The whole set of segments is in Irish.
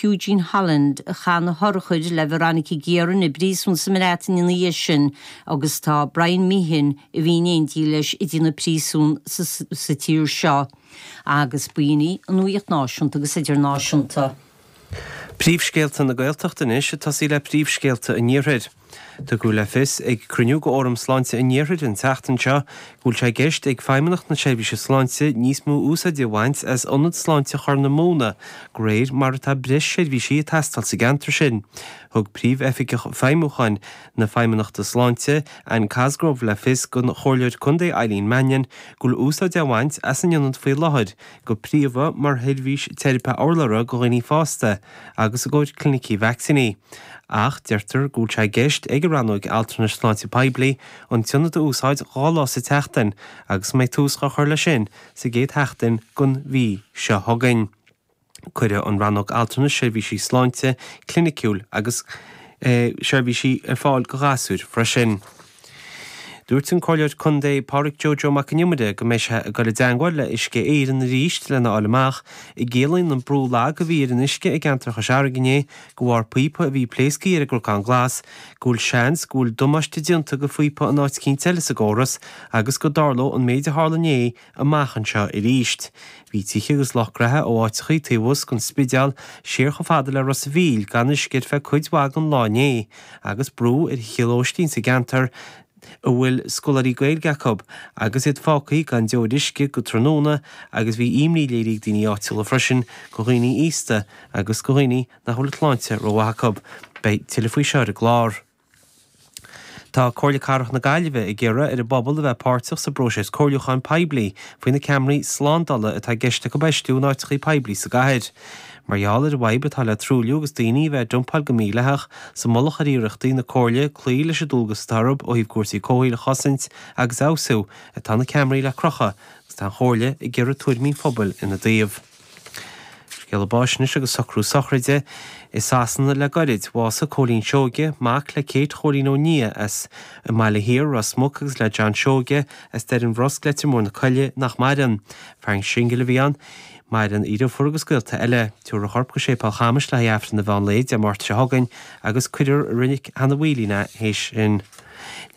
Eugene Holland, a chaith na hurchair le Veronica Guerin i bpríosún sa mBreatain é ina dhiaidh sin agus tá Brian Meehan, a bhí in éindí leis i dtéarma príosúin sa tír seo, agus b'in í an nuaíocht náisiúnta agus idirnáisiúnta. Príomhscéalta na Gaeltachta anois ag tosaí le príomhscéalta an Iarthair. Tugadh le fios ag cruinniú go Fhóram Sláinte an Iarthair an tseachtain seo go bhfuil sé i gceist ag Feidhmeannacht na Seirbhíse Sláinte níos mó úsáide a bhaint as Ionad Sláinte Chorr na Móna de réir mar atá breis seirbhísí ag teastáil sa gceantar sin. Thug Príomh-Oifigeach Feidhmiúcháin na Feidhmeannachta Sláinte, Anne Cosgrove le fios don Chomhairleoir Contae Eileen Mannion go bhfuil úsáid á bhaint as an ionad faoi láthair go príomha mar sheirbhís teiripe urlabhra do dhaoine fásta, agus i gcomhair clinicí vacsaíní, ach deirtear go bhfuil sé i gceist ag an Rannóig Altranais Sláinte Poiblí an t-ionad a úsáid dhá lá sa tseachtain agus go mbeidh tús á chur leis sin sa gcéad sheachtain den mhí seo chugainn. Cuirfidh an Rannóg Altranais seirbhísí sláinte cliniciúil agus seirbhísí ar fáil go ghasúir freisin. Dúirt an Comhairleoir Contae Pádraig Joe Joe Mac an Iomaire go mbeidh sé ag dul i dteangmháil le Uisce Éireann arís lena fháil amach an gciallaíonn an brú lag a bhí ar an uisce i gceantar Chois Fharraige inné go bharr píopa a bhí pléasctha ar an gCnocán Glas go bhfuil seans go bhfuil damáiste déanta go phíopa in áit eicínt eile sa gcóras agus go dtarlódh an méid a tharla inné amach anseo arís. Bhí tithe agus lucht gnaithe ó áiteachaí taobh thuas den Spideál siar chomh fada le Ros a' Mhíl gan uisce ar feadh cuid mhaith den lá inné agus brú ar thithe lóistín sa gceantar a bhfuil scoláirí Gaeilge acu agus iad fágtha gan deoir uisce go tráthnóna agus bhí imní léirithe ag daoine áitiúla freisin go dhaoine aosta agus go dhaoine nach bhfuil an tsláinte rómhaith acu. Beidh tuilleadh faoi seo ar an gclár. Tá Comhairle Cathrach na Gaillimhe ag iarraidh ar an bpobal a bheith páirteach sa bpróiseas comhairliúcháin poiblí faoi na ceamaraí slándála atá i gceist acu a fheistiú in áiteachaí poiblí sa gcathair. Mar gheall ar an bhfadhb atá le truailliú agus daoine a bheith ag dumpáil go mídhleathach sa mullach ar iarrachtaí na Comhairle cloí leis an dualgas atá orthu ó thaobh cúrsaí comhshaoil a chosaint agus a fheabhsú, atá na ceamaraí le crochadh agus tá an Chomhairle ag iarraidh tuairimí an phobail ina dtaobh. Scéala báis anois agus socrú sochraide. I Sasana le goirid. Bhásaigh Cóilín Seoige, mac le Kate Chóilín Ó Nia as an mBaile Thiar, Ros Muc agus le John Seoige as Doire an Bhrosc, Leitir Móir na Coille, nach maireann. Fear singil a bhí ann. Maireann a dheirfiúr agus gaolta eile. Tabharfar a chorp go Séipéal Chamais le haghaidh Aifreann an mheán lae Dé Máirt seo chugainn agus cuirfear i Reilig Chnocán an Bhodaigh é théis sin.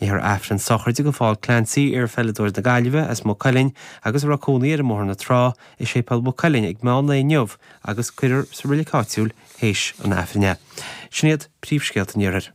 Léifear Aifreann sochraide go Phól Clancy, iar-pheileadóir na Gaillimhe as Maigh Cuilinn agus a raibh cónaí air i mBóthar na Trá, i Séipéal Mhaigh Cuilinn ag meán lae inniu agus cuirfear sa roilic áitiúil théis an Aifrinn é. Sin iad príomhscéalta an Iarthair.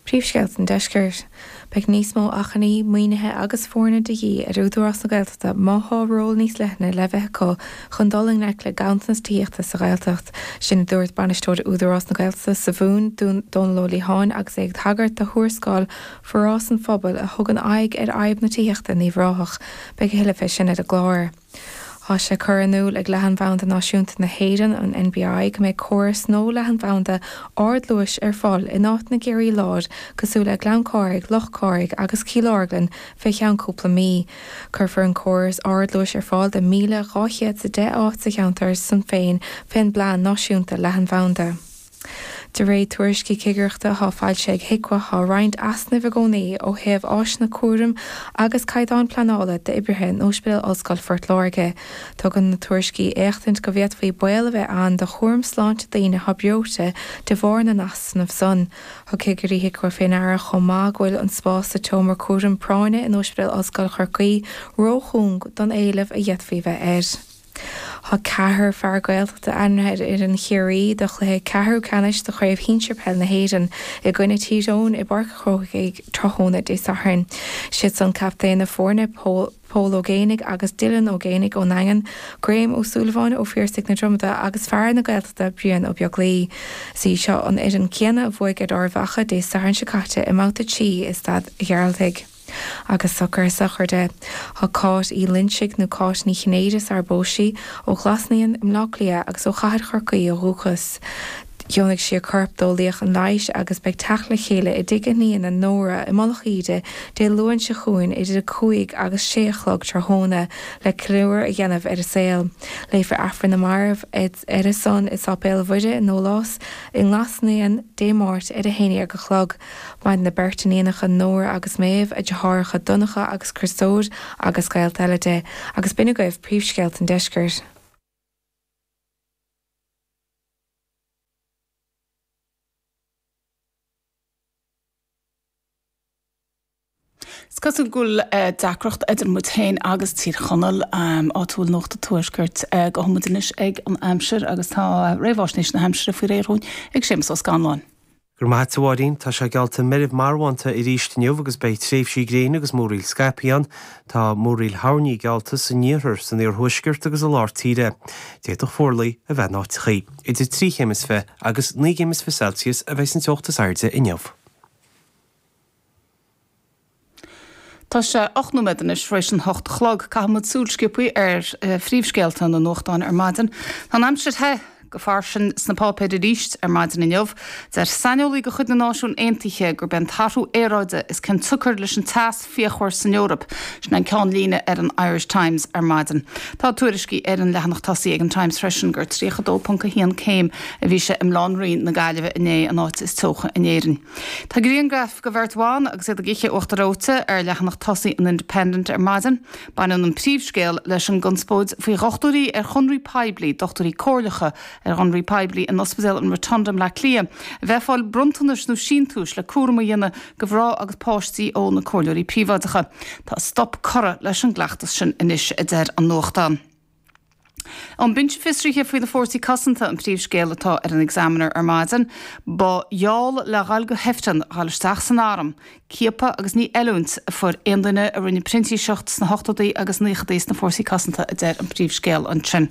Príomhscéalta an Deiscirt. Beidh níos mó acmhainní, maoinithe agus foirne de dhíth ar Údarás na Gaeltachta má tá ról níos leithne le bheith acu chun dul i ngleic le ganntanas tithíochta sa Ghaeltacht. Sin a dúirt Bainisteoir Údarás na Gaeltachta sa Mhumhain, Dónal Ó Liatháin agus é ag tagairt do thuarascáil Forás an Phobail a thugann aghaidh ar fhadhb na tithíochta i nUíbh Ráthach. Beidh a thuilleadh fé sin ar an gclár. Tá sé curtha in iúl ag Leathanbhanda Náisiúnta na hÉireann, an NBI, go mbeidh córas nua leathanbhanda ardluais ar fáil in áiteanna i gCiarraí Láir cosúil le Gleann Chárthaigh, Loch Cárthaigh agus Cill Orglan fé cheann cúpla mí. Cuirfear an córas ardluais ar fáil do 1,210 áit sa cheantar san féin fén bPlean Náisiúnta Leathanbhanda. De réir tuairiscí cigireachta atá foilsithe ag Hiqua tá roinnt easnaimh i gcónaí ó thaobh áiseanna cúraim agus caighdeáin pleanála d'oibrithe in Óispidéal Ollscoil Phort Láirge. Tugann na tuairiscí éachtaint go bhféadfaí baol a bheith ann do chúram sláinte daoine atá breoite de bharr na n-easnamh san. Thug cigirí Hiqua fé ndeara chomh maith go bhfuil an spás sa tseomra cúraim práinne in Óispidéal Ollscoil Chorcaí ró-chúng don éileamh a d'fhéadfaí a bheith air. Tá ceathrar fear Gaeltachta ainmnithe ar fhoireann Chiarraí do chluiche ceathrú ceannais do Chraobh Shinsir Peil na hÉireann i gcoinne Tír Eoghain i bPáirc an Chrócaigh tráthnóna Dé Sathairn. Siad san captaen na foirne, Pól Ó Géibheannaigh agus Dylan Ó Géibheannaigh ón nDaingean, Graham Ó Súilleabháin ó Phiarsaigh na Dromoda agus fear na Gaeltachta Brian Ó Beaglaoi. Is í seo an fhoireann céanna a bhuaigh ar Ard Mhacha Dé Sathairn seo caite i mbabhta 3 i Staid an Ghearaltaigh. Agus socrú sochraide. D'éag Cáit Uí Loinsigh, nó Cáit Ní Chinnéide sarar phós sí, ó Ghlas Naíon i mBleá Cliath agus ó Chathair Chorcaí ó dhúchas. Dheonaigh sí a corp d'eolaíocht an leighis agus beidh teacht le chéile i dtigh a hiníne Nóra i Mullach Íde Dé Luain seo chugainn idir a cúig agus sé a chlog tráthnóna le ceiliúradh a dhéanamh ar a saol. Léifear Aifreann na Marbh ar a son i Sáipéal Mhuire na nDólás i nGlas Naíon Dé Máirt ar a haon déag a chlog. Maireann a beirt iníonacha Nóra agus Méabh, a deartháireacha Donncha agus Criostóir agus gaolta eile di, agus b'in agaibh príomhscéalta an deiscirt. Is cosúil go bhfuil deacracht idir muid féin agus Tír Chonaill áit a bhfuil Nuacht an Tuaiscirt gabhfaidh muid anois ag an aimsir agus tá réamháisnéis na haimsire faoi réir dhúinn ag Séamus Ó Scanláin. Go raibh maith a't a Mháirín. Tá sé geallta meirbh marbhánta aríst inniu agus beidh tréimhsí gréine agus múraíl scaipthe ann. Tá múraíl thoirní geallta san iarthar, san iarthuaisceart agus i lár tíre. D'fhéadfadh fuarlaigh a bheith in áiteachaí. Idir trí chéim is fiche agus naoi gcéim is fiche Celsius a bheidh an teocht is airde inniu. Tá sé ocht nóiméad anois tar éis an hocht a chlog. Caithfidh muid súil sciopthaí ar phríomhscéalta na nuachtáin ar maidin. Tá an aimsir the go fairsing sna páipéir arís ar maidin inniu. Deir saineolaí de chuid na Náisiún Aontaithe gurb é an t-athrú aeráide is cionsiocair leis an teas fíochmhar san Eoraip. Sin é an ceannlíne ar an Irish Times ar maidin. Tá tuairiscí ar an leathanach tosaigh ag an Times freisin gur 32.1 céim a bhí sé i mBaile Átha an Rí na Gaillimhe inné, an áit is teocha in Éirinn. Tá grianghraif de bheirt bhan agus iad ag ithe uachtar reoite ar leathanach tosaigh an Independent ar maidin. Baineann an príomhscéal leis an gconspóid faoi dhochtúirí ar chonraí poiblí, dochtúirí comhairleacha ar chonraí poiblí in Ospidéal an Rotunda i mBleá Cliath, a bheith ag fáil bronntanais nó síntiúis le cúram a dhéanamh do mhná agus páistí ó na comhairleoirí príobháideacha. Tá stop curtha leis an gcleachtas sin anois, a deir an nuachtán. An Binse Fiosraithe faoi na Fórsaí Cosanta an príomhscéal atá ar an Examiner ar maidin. Ba gheall le dhul go hIfreann dhul isteach san Arm. Ciapadh agus ní oiliúint a fuair aon duine a rinne printíseacht sna hochtódaí agus naochadaí sna Fórsaí Cosanta a deir an príomhscéal ansin.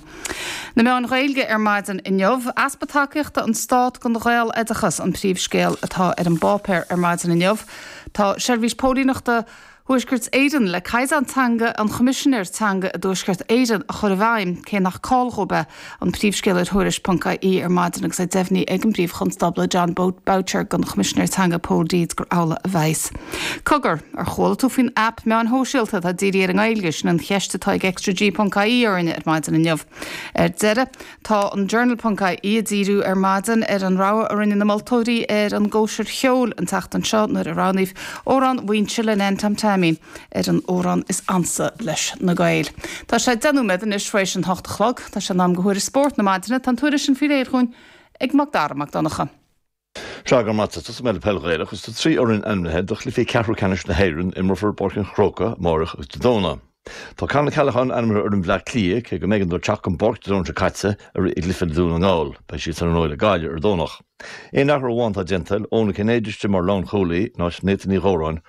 Na Meáin Ghaeilge ar maidin inniu. Easpa tacaíochta ón Stát don Ghaeloideachas an príomhscéal atá ar an bpáipéar ar maidin inniu. Tá Seirbhís Póilíneachta. Thuaisceart Éireann, le Caighdeán Teanga an Choimisinéir Teanga i dTuaisceart Éireann a chur i bhfeidhm, cé nach call dhóibh é, an príomhscéal ar Thuairisc.ie ar maidin agus é deimhnithe ag an bPríomh-Chonstábla Jon Boutcher don Choimisinéir Teanga Pól Deeds gur amhlaidh a bheas. Cogar, ar chuala tú faoin aip meáin shóisialta atá dírithe ar an nGaeilge? Sin an cheist atá ag ExtraG.ie orainne ar maidin inniu. Ar deireadh, Tá an Journal.ie ag díriú ar maidin ar an rogha a rinne na moltóirí ar an gCóisir Cheoil an tseachtain seo nuair a roghnaíodh Amhrán Mhuínse le Nan Tom Taimín ar an amhrán is ansa leis na Gaeil. Tá sé deich nóiméad anois tar éis an hocht a chlog. Tá sé in am do thuairisc spóirt na maidine. Tá an tuairisc sin faoi réir dhúinn ag Macdara Mac Donncha. Go raibh maith agat. Tosóidh mé le peil Ghaelach is tá trí fhoireann ainmnithe do chluichí ceathrú ceannais na hÉireann, a imreofar i bPáirc an Chrócaigh amárach agus Dé Domhnaigh. Tá Con Ó Ceallacháin ainmnithe ar fhoireann Bhleá Cliath, cé go mb'éigean dó teacht den bpáirc Dé Domhnaigh seo caite i rith an chluiche le Dún na nGall, beidh siad san iarnóin le Gaillimh ar an Domhnach. Aon athrú amháin atá déanta, Eoin Ó Cinnéide istigh mar lánchúlaí in áit Nathan Uí Dhóráin,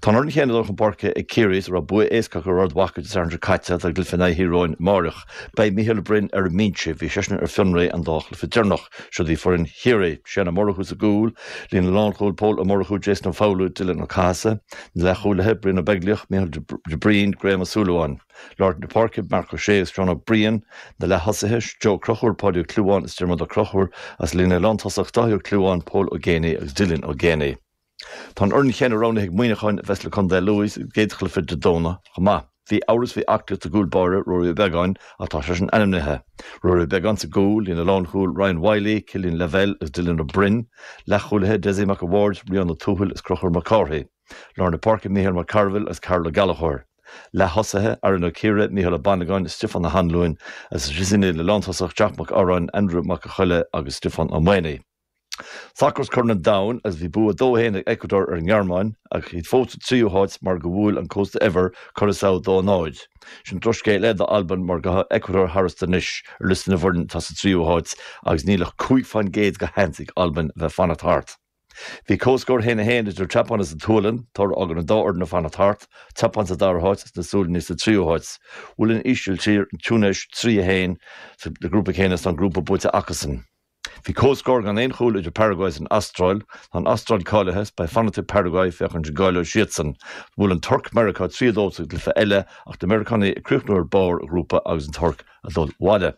Tá an fhoireann chéanna ag dul chun páirce ag Ciarraí is a raibh bua éasca acu ar Ard Mhacha Dé Sathairn seo caite don chluiche in aghaidh Thír Eoghain amáireach. Beidh Mícheál Ó Broin ar an mbinse. Bhí seisean ar fionraí an dá chluiche deireanach. Siod í foireann Chiarraí. Shane Ó Murchú sa gcúl, líne na lánchúil Pól Ó Murchú, Jason Ó Foghlú, Dylan Ó Cathasaigh. Na leathchúlaithe, Brian Ó Beaglaoich, Mícheál de Braoin, Graham Ó Súilleabháin. Lár na páirce, Marc Ó Sé agus Seán Ó Briain. Na leath-thosaithe, Joe Ó Conchúir, Páidí Ó Clúmháin is Diarmuid Ó Conchúir. Is an líne lántosach, Dáithí Ó Clúmháin, Pól Ó Géibheannaigh agus Dylan Ó Géibheannaigh. Tá an fhoireann chéanna roghnaithe ag Muíneacháin a bheas le Condae Lú sa gcéad chluiche Dé Domhnaigh chomh maith. Bhí amhras faoi aclaíocht a gcúlbáire Ruairí Ó Beagáin ach tá seisean ainmnithe. Ruairí Ó Beagáin sa gcúl, líne lánchúil Ryan Wylie, Killian Lavelle agus Dylan Ó Broin, leathchúlaithe Dessie Mac a' Bhaird, Rian Ó Tuathail agus Crochúr Mac Cárthaigh. Lár na páirce Micheál Mac Cearbhaill agus Karl Ó Gallchóir. Leath-thosaithe, Aaron Ó Ciardha, Micheál Ó Banagáin, Stiofán Ó hAnnluain agus is í an líne lántosach Jack Mac Cearáin, Andrew Mac a' Choille agus Stiofán Ó Maonaigh. Sacar is Corn an Domhain agus bhí bua 2 1 ag Ecuador ar an nGearmáin ach iad fós sa tríú háit mar go bhuail an Cósta Eabhair Curaçao 2 0. Sin drochscéal eile d'Albain mar ghabh Ecuador tharstu anois ar liosta na bhfoireann atá sa tríú háit agus níl ach cúig fán gcéad de sheans ag Albain a bheith ag fanacht thart. Bhí comhscór 1 1 idir an tSeapáin is an tSualainn, toradh a fhágann an dá fhoireann ag fanacht thart, an tSeapáin sa dara háit is na Sualannaigh sa tríú háit. Bhuail an Ísiltír an Túinéis 3 1 sa grúpa céanna is tá an grúpa buaite acusan. Bhí comhscór gan aon chúl idir Paraguay is an Astráil. Tá an Astráil cáilithe is beidh fanacht ag Paraguay féachaint an gcáileoidh siadsan. Bhuail an Tuirc Meiriceá 3 a 2 sa gcluiche eile ach na Meiriceánaigh ag críochnú ar barr an ghrúpa agus an Tuirc ag dul abhaile.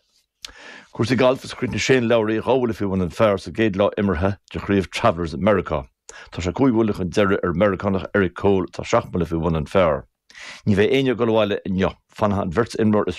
Cúrsaí gailf is chríochnaigh Shane Lowry dhá bhuille faoi bhun an phair sa gcéad lá imeartha de chraobh Travelers i Meiriceá. Tá sé cúig bhuille chun deiridh ar an Meiriceánach Eric Cole atá seacht mbuille faoi bhun an phair. Ní bheidh éinne ag dul abhaile inniu. Fanfaidh an bheirt imreoir is